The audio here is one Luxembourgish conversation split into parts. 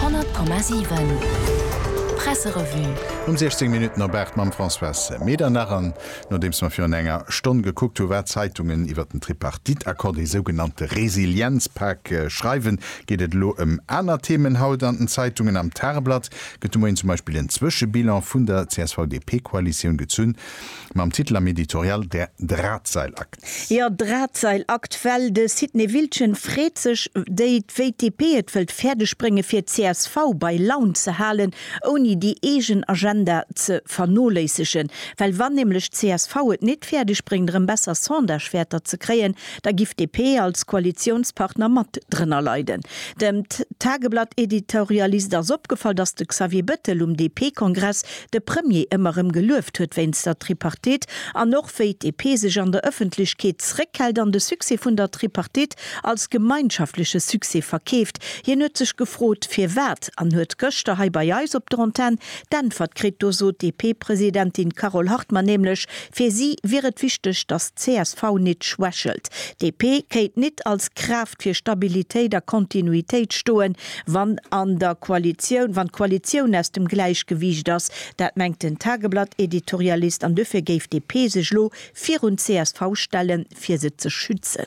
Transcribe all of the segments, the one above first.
100,7 Presserevue. Um 16 Minutten op 8 mam Françoise Medernach. An nodeems mer virun enger Stonn gekuckt hu wat d'Zeitungen iwwert den Tripartite-Accord, dee sougenannte Resilienzpak, schreiwen, geet et elo ëm aner Themen haut an den Zeitungen. Am Tageblatt gëtt de Moien zum Beispill en Zwëschebilan vun der CSV-DP-Koalitioun gezunn. mam Titel am Editorial Der Drahtseilakt. Jo, Drahtseilakt, well de Sidney Wiltgen freet sech, déi wéi d'DP et wëllt fäerdeg brénge fir csv bei Laun ze halen, ouni déi eegen Agenda ze vernoléissegen. Well wann nämlech csv et nit fäerdeg bréngt erëm besser Sondagewäerter ze kréien, da giff DP als Koalitiounspartner mat drënner leiden. Dem Tageblatt-Editorialist ass opgefall, datt de Xavier Bettel um DP-Kongress, de Premier ëmmer erëm gelueft huet wéinst der Tripartite an och wéi d'DP sech an der Ëffentlechkeet zréckhält an de Succès vun der Tripartite als gemeinschaftleche Succès verkeeft. Hien huet sech gefrot, firwat an huet gëschter hei bei eis op der Antenn d'Äntwert kritt. Do sot d'DP-Presidentin Carole Hartmann nämlech, fir si wier et wichteg, datt csv nit schwächelt. D'DP kéint nit als Kraaft fir Stabilitéit a Kontinuitéit stoen, wann an der Koalitioun, wann d'Koalitioun aus dem Gläichgewiicht ass, dat mengt den Tageblatt-Editorialist, an duerfir géif d'DP sech elo virun d'CSV stellen, fir se ze schützen.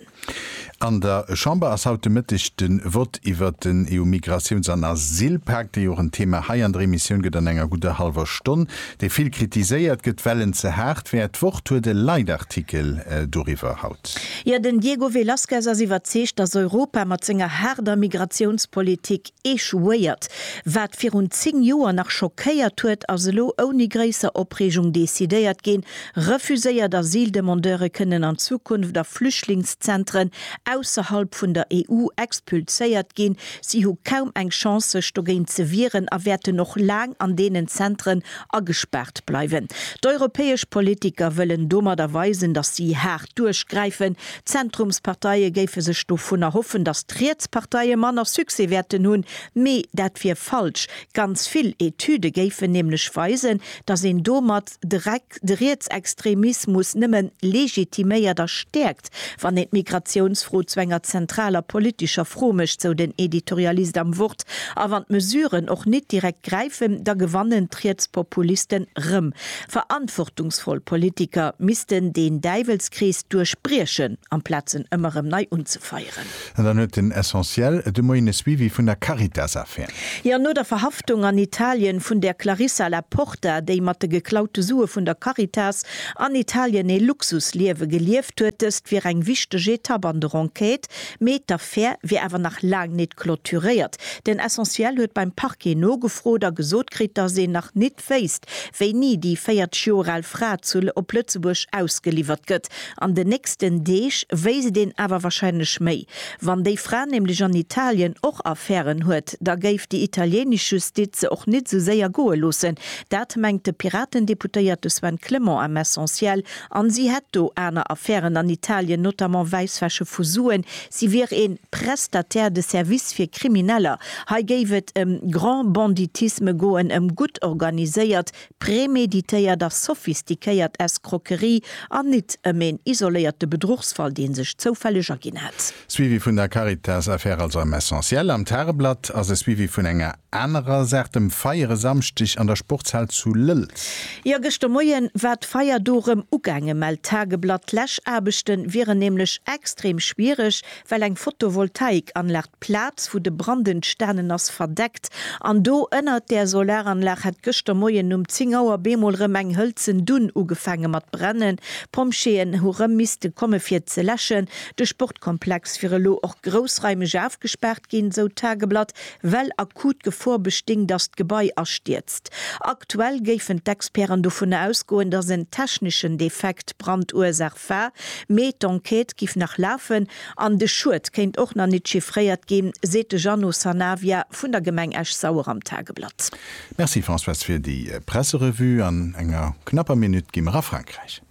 An der Chamber ass haut de Mëtteg de Vott iwwert den EU-Migratiouns an Asylpak, dee jo och en Thema hei an der Emissioun gëtt, an enger gudder hallwer Stonn, dee vill kritiséiert gëtt, well en ze haart wär. D'Wort huet e Leitartikel doriwwer. Jo, den Diego Velázquez ass iwwerzeegt, datt Europa mat senger haarder Migratiounspolitik échouéiert. Wat virun 10 Joer nach schockéiert huet, ass elo ouni gréisser Opreegung decidéiert ginn, Refuséiert Asyldemandeure kënnen an Zukunft a Flüchtlingszentren ausserhalb vun der EU expulséiert ginn. Si hu kaum eng Chance sech dogéint ze wieren a wäerten och laang an deenen Zentren agespaart bleiwen. D'europäesch Politiker wëllen domadder weisen, datt si haart duerchgräifen. D'Zentrumsparteie géife sech dovun erhoffen, datt d'Rietsparteie manner Succès wäerten hunn. Mee dat wier falsch. Ganz vill Etüde géifen nämlech weisen, datt een domat de Rietsextremismus nëmme legitiméiert a stäerkt. Wann een d'Migratiounsfro zu enger zentraler politescher Fro mécht, sou den Editorialist am Wort, a wann d'Mesuren och nit direkt gräifen, da gewannen d'Rietspopulisten rëm. Verantwortungsvoll Politiker missten deen Däiwelskrees duerchbriechen, amplaz en ëmmer rëm nei unzefeieren. An dann huet den Essentiel de Moien e Suivi vun der Caritas-Affär. Jo, no der Verhaftung an Italien vun där Clarissa La Porta, déi mat de geklaute Sue vun der Caritas an Italien ee Luxusliewe gelieft huet. Dëst wier eng wichteg Etapp an der Enquête, mee d'Affär wier awer nach laang nit clôturéiert. Den Essentiel huet beim Parquet nogefrot a gesot kritt, dass een nach nit. Verdacht wéisst, wéini déi 40 Joer al Fra zu op Lëtzebuerg ausgeliwwert gëtt. An den nächsten Deeg wéisst et een awer wahrscheinlech méi. Wann déi Fra nämlech an Italien och Affären huet, da géif déi italienesch Justiz se och nit esou séier goe loossen. Dat mengt de Piraten-Deputéierte Sven Clement am Essentiel. A si hätt do aner Affären an Italien, notamment Wäisswäsche vu Suen. Si wier ee Prestataire de services fir Krimineller. Hei géif et ëm Grand Banditisme goen, ëm gutt organiséiert, preméditéiert a sophistiquéiert Escroquerie an nit ëm een isoléierte Bedruchsfall, dee sech zoufälleg erginn hätt. Suivi vun der Caritas-Affär also am Essentiel. Am Tageblatt ass e Suivi vun enger anerer Saach, dem Feier e Samschdeg an der Sportshal zu Lëlz. Jo, gëschter Moie war d'Feier do erëm ugaange, mellt d'Tageblatt. D'Läschaarbechte wieren nämlech extrem schwiereg, well eng Photovoltaik-Anlag D'Plaz, wou de Brand entstanen ass, verdeckt an do ënnert där Solaranlag hätt gëschter Moien um 10 Auer bemol rëm eng hëlzen Dunn ugefaange mat brennen. D'Pompjeeën hu rëm misste komme fir ze läschen. De Sportkomplex wier elo och groussraimeg ofgespaart ginn, esou d'Tageblatt, well akut Gefor bestinn, datt d'Gebai astierzt. Aktuell géifen d'Experten dovunner ausgoen, datt en techneschen Defekt d'Brandursach erlieft war, mee d'Enquête giff nach lafen an de Schued kéint och nach nit chiffréiert ginn, seet de Jeannot Sanavia vun der Gemeng Esch-Sauer am Tageblatt. Merci Françoise fir déi Presserevue. An enger knapper Minutt gi mer a Frankräich.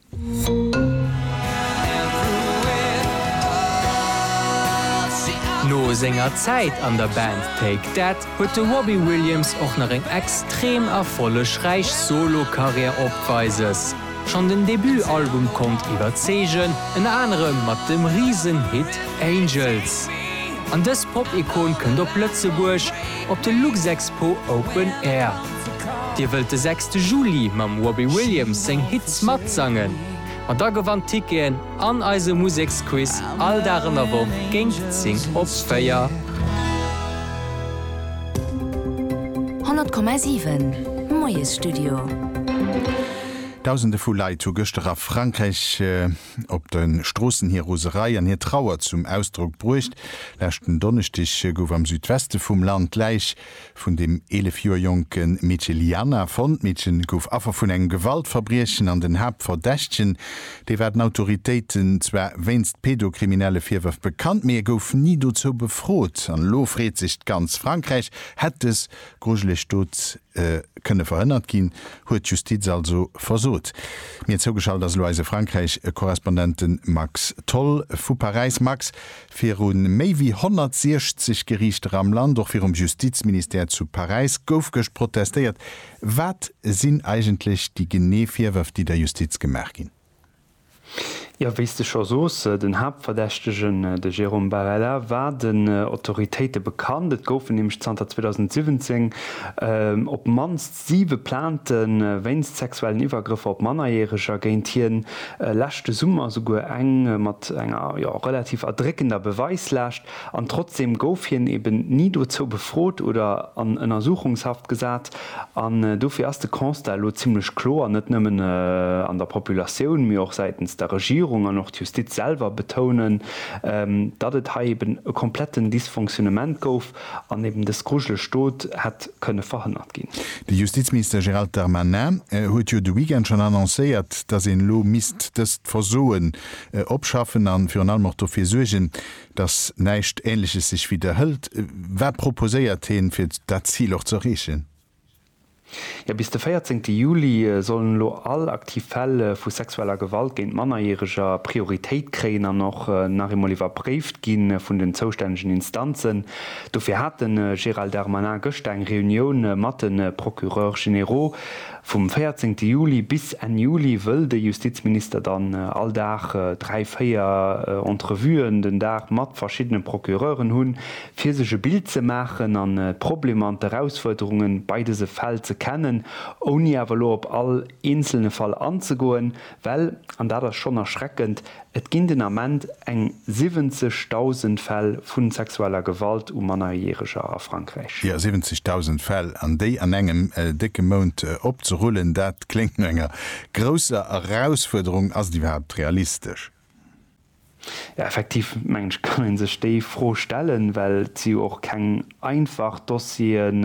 No senger Zäit an der Band Take That huet de Robbie Williams och nach eng extrem erfollegräich Solo-Karriär opweises. Schonn den Debut-Album konnt iwwerzeegen, ënner anerem mat dem Risen-Hit Angels. An dës Pop-Ikon kënnt op Lëtzebuerg op de Luxexpo Open Air. Dir wëllt de sechste Juli mam Robbie Williams seng Hits matsangen? Ma da gewannt Ticketen an eise Museksquiz all Dag an der Woch géint 10 op 4. 100,7 Moies Studio. Dausende vu Leit hu gëschter a Frankräich op de Stroossen hir Roserei an hir Trauer zum Ausdrock bruecht. Leschten Donneschdeg gouf am Südweste vum Land d'Läich vun dem 11 Joer jonke Meedche Liana fonnt. D'Meedche gouf Affer vun engem Gewaltverbriechen an den Haaptverdächtegen, dee war den Autoritéiten zwar wéinst pedokriminelle Virwërf bekannt, mee e gouf ni dozou befrot. An elo freet sech ganz Frankräich, Hätt dës Grujeleg Dote kënne verhënnert ginn, huet d'Justiz also versot? Mir zougeschalt ass elo eise Frankräich-Korrespondenten Max Tholl vu Paräis. Max, viru méi wéi 160 Geriichter am Land, och virum Justizministère zu Paräis, gouf gëscht protestéiert. Wat sinn eigentlech déi genee Virwërf, déi der Justiz gemaach ginn? Jo, wéi s de scho soos, den Haaptverdächtegen, de Jérôme Barela, war den Autoritéite bekannt. Et goufen nämlech zanter 2017 op d'mannst siwe Plainte wéinst sexuellen Iwwergrëffer op Mannerjäreger géint hien, leschte Summer souguer eng mat enger, jo, relativ erdréckender Beweislaascht. An trotzdem gouf hien eben ni dozou befrot oder an Ënnersuchungshaft gesat. An dofir ass de Constat elo zimmlech kloer, net nëmmen an der Populatioun, mee och säitens der Regierung an och d'Justiz selwer betounen, datt et hei eben e kompletten Dysfonctionnement gouf an eben dës grujeleg Dot hätt kënne verhënnert ginn. De Justizminister Gérald Darmanin huet jo de Weekend schonn annoncéiert, datt een elo misst dëst Versoen opschaffen a virun allem och dofir suergen, datt näischt Ähnleches sech widderhëlt. Wat proposéiert heen, fir dat Zil och ze erreechen? Jo, bis de 14 Juli sollen elo all aktiv Fäll vu sexueller Gewalt géint Mannerjäreger Prioritéit kréien an och nach eemol iwwerpréift gi vun den zoustännegen Instanzen. Dofir hat de Gérald Darmanin gëschter eng Reunioun mat de Procureurs généraux. Vum 14 Juli bis Enn Juli wëll de Justizminister dann all Dag dräi, véier Entrevuen den Dag mat verschiddene Procureuren hunn, fir sech e Bild ze maachen an d'Problemer an d'Erausfuerderunge bei dëse Fäll ze kennen, ouni awer elo op all eenzelne Fall anzegoen, Well, an dat ass schonn erschreckend, et ginn den Ament eng 70.000 Fäll vu sexueller Gewalt u Mannerjäreger a Frankräich. Jo, 70.000 Fäll, an déi an engem décke Mount opzerullen, dat kléngt no enger grousser Erausfuerderung. Ass et iwwerhaapt realistesch? Jo, effektiv mengen ech, kann ee sech déi Fro stellen, well et si jo och keng einfach Dossieren.